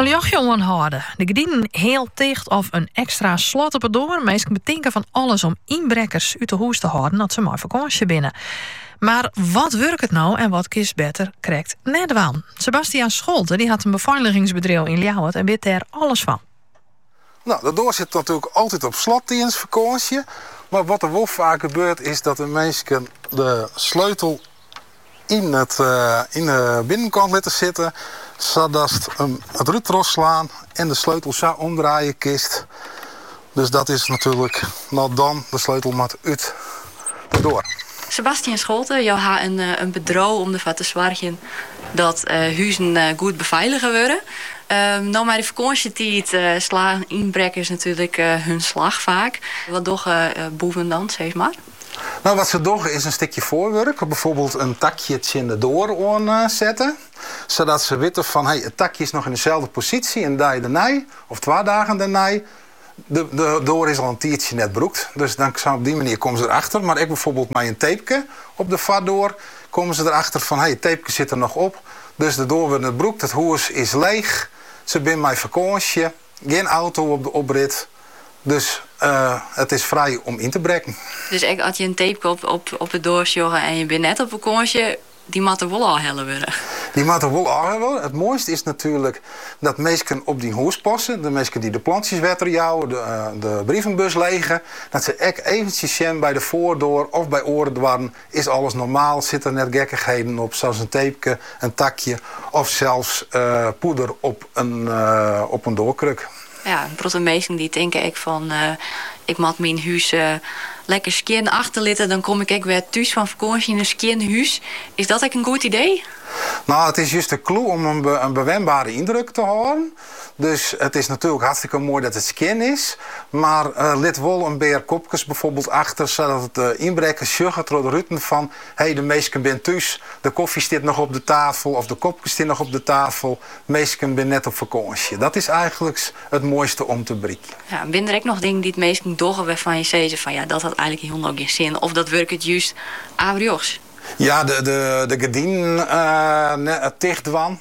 In ljochtsje oanhâlde, de gerdinen heal ticht of in ekstra slot op de doar. Minsken betinke fan alles om ynbrekkers út 'e hûs te hâlden as ze mei fakânsje binne. Mar wat wurket no en wat kinst better krekt net dwaan? Sebastian Scholte dy hat in befeiligingsbedriuw yn Ljouwert en wit dêr alles fan. No, de doar sit natuerlik altyd op slot tidens fakânsje. Mar wat der wol faak gebeurt is dat de minsken de sleutel yn it yn 'e binnenkant litte sitte sadatst it rút trochslaan en de sleutel sa omdraaie kinst. Dus dat is natuerlik no dan de sleutel moat út de doar. Sebastian Scholte, jo ha in bedriuw om derfoar te soargjen dat huzen goed befeilige wurde. No mei de fakânsjetiid slaan ynbrekkers natuerlik hun slach faak. Wat dogge boeven dan? Sis mar. No, wat se dogge is in stikje foarwurk, byfoarbyld in takje tsjin de doar oan sette, sadat se witte fan hey, it takje is noch yn deselde posysje in dei dernei of twa dagen dernei. De doar is al in tiidsje net brûkt, dus dan op dy manier komme se der achter. Mar ek byfoarbyld mei in teepke op de foardoar komme se der achter fan hey, it teepke sit der noch op, dus de doar wurdt net brûkt, it hûs is leech, se binne mei fakânsje. Gjin auto op de oprit, dus it is frij om yn te brekken. Dus ek as je in teepke op de doar sjogge en je binne net op fakânsje, dy moat der wol ôfhelle wurde. Dy moat der wol ôfhelle wurde. It moaiste is natuerlik dat minsken op dyn hûs passe, de minsken dy't de plantsjes wetter jouwe, de brievenbus lege, dat se ek eventsjes sjen by de foardoar of by oare doarren Is alles normaal, sit der net gekkigheden op, sa's in teepke, in takje of sels poeder op in doarkruk? Ja, in protte minsken dy tinke ek fan, ik moat myn hûs lekker skjin achterlitte, dan kom ik ek wer thús fan fakânsje yn in skjin hûs. Is dat ek in goed idee? No, it is just de klû om in bewenbare yndruk te hâlden. Dus it is natuerlik hartstikke moai dat it skjin is, mar lit wol in pear kopkes byfoarbyld achter sadat de ynbrekkers sjogge troch de ruten fan hey de minsken binne thús, de kofje stiet noch op de tafel of de kopkes steane noch op de tafel, minsken binne net op fakânsje. Dat is eigenlyks it moaiste om te bereikjen. Ja, binne der ek noch dingen dy't minsken dogge wêrfan je sizze fan ja dat hat eigenlyk hielendal gjin sin of dat wurket just averjochts? Ja, de gerdinen net ticht dwaan.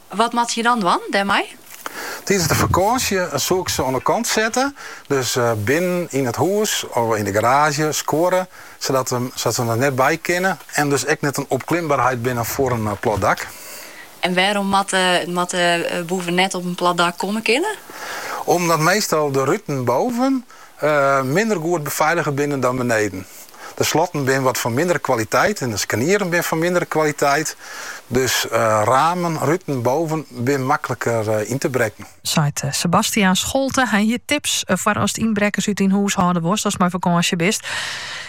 Wat moatte je dan dwaan dêrmei? Tidens de fakânsje soe ik se oan 'e kant sette, dus binnen yn it hûs of yn de garaazje, skuorre, sadat se der net by kinne en dus ek net in opklimberheid binne foar in plat dak. En wêrom moatte boeven net op in plat dak komme kinne? Omdat meastal de ruten boven minder goed befeilige binne dan beneden. De slotten binne wat fan mindere kwaliteit en de skarnieren binne fan mindere kwaliteit. Dus ramen, ruten, boven binne makliker yn te brekken. Seit Sebastiaan Scholte. Hy hie tips foar ast ynbrekkers út dyn hûs hâlde wolst ast mei fakânsje bist.